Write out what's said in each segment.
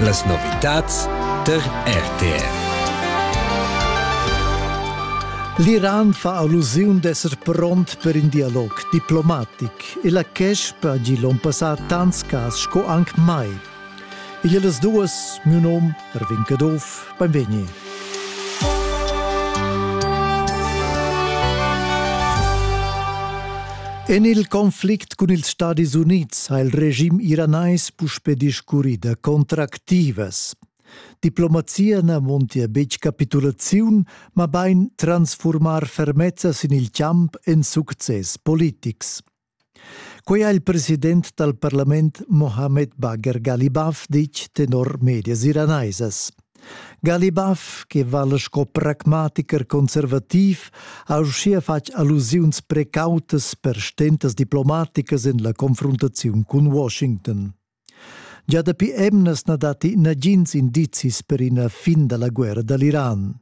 Las novitads tar RTR. L'Iran fa allusiun d'esser pront per in dialog diplomatic e la Kesp ha gì l'onn passà tants cas sco anc mai. Igl è las duas, miu nom, Erwin Caduff, benvegni. En il conflict cun ils Stadis Unids ha il regim iranais puspe discurrì da contractivas. Diplomazia na montia betg capitulaziun, mabain transfurmar fermezza sin il champ en success politics. Quei ha il president dal parlament Mohammed Bagher Ghalibaf ditg tenor medias iranaisas. Ghalibaf, che vala sco pragmaticher conservativ, ha uschia fatg allusiuns precautas per stentas diplomaticas en la confruntaziun cun Washington. Gia dapi emnas na datti nagins indizis per ina fin da la guerra da l'Iran.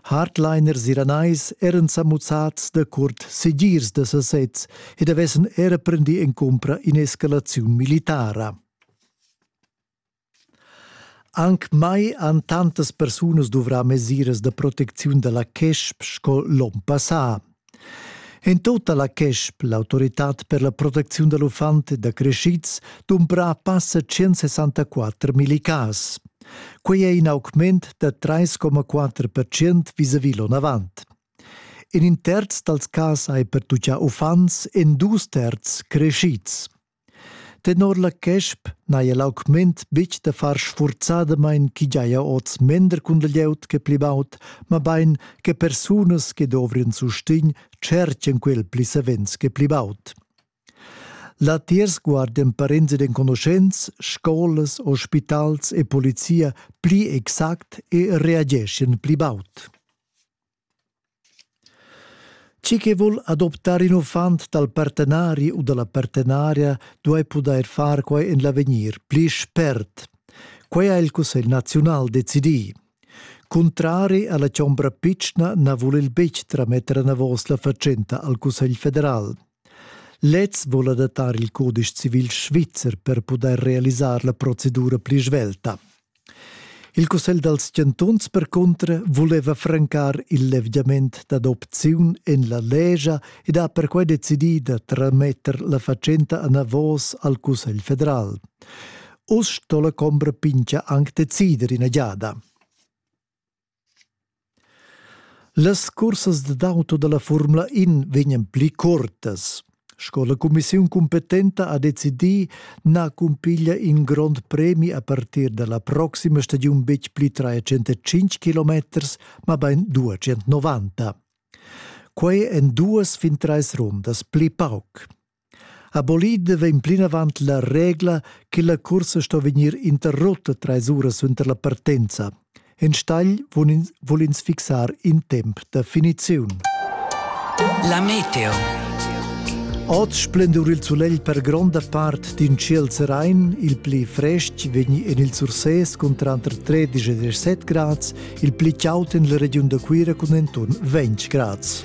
Hardliners iranais eran sa muzzads da curt segirs da sasez ed avessan era prendì en cumpra in'escalaziun militara. Anc mai han tantas persunas duvrà mesiras da protecziun da la Kesp sco l'onn passà. En tota la CESP, l'autoritad per la protecziun dal uffant da crescids, dumbra passa 164 millicas. Quei è in augment da 3,4% vis-à-vis l'onavant. In terz dals cas hai pertuccà uffants en dus terz crescids. Tenor la quesp n'haja l'augment betg da far sfurzadamain ch'i giaja oz mender cun la glieud che pli baud, mabain che persunas che dovrian sustegn tschertgian quel pli savens che pli baud. Latiers guardan parents ed enconuschents, scolas, ospitals e polizia pli exact e reageschian pli baud. Chi che vul adoptar ün uffant dal partenari u da la partenaria duai pudair far quai en l'avegnir pli spert. Quai ha il Cussegl naziunal decidì. Cuntrari a la chombra pitschna na vul il betg trametter anavos la fatschenta al Cussegl federal. Lez vul adattar il codice civil svizzer per pudair realisar la procedura pli svelta. Il cussegl dals chantuns percunter vuleva francar il levgiament dad opziun en la lescha ed ha perquai decidì da trametter la fatschenta anavos al Cussegl federal. Uss sto la chombra Pincha anc decider ina giada. Las cursas dad auto dalla Formula In vegnan pli cuortas. Sco la cumissiun cumpetenta ha decidì, na cumpiglia in grond premi a partir dalla proxima stagiun betg pli 305 km, mabain 290. Quei en duas fin treis rundas pli pauc. A bolida vegn plinavant la regla che la cursa sto vegnir interrutta trais uras suenter la partenza. Enstagl vul ins, vul ins fixar in temp da finiziun. La meteo. Oz splendur il sulegl per gronda part d'in ciel serain, il pli frestg vegni en il Sursés cun tranter 13 e 17 grads, il pli chaud en la regiun da Cuira cun entun 20 grads.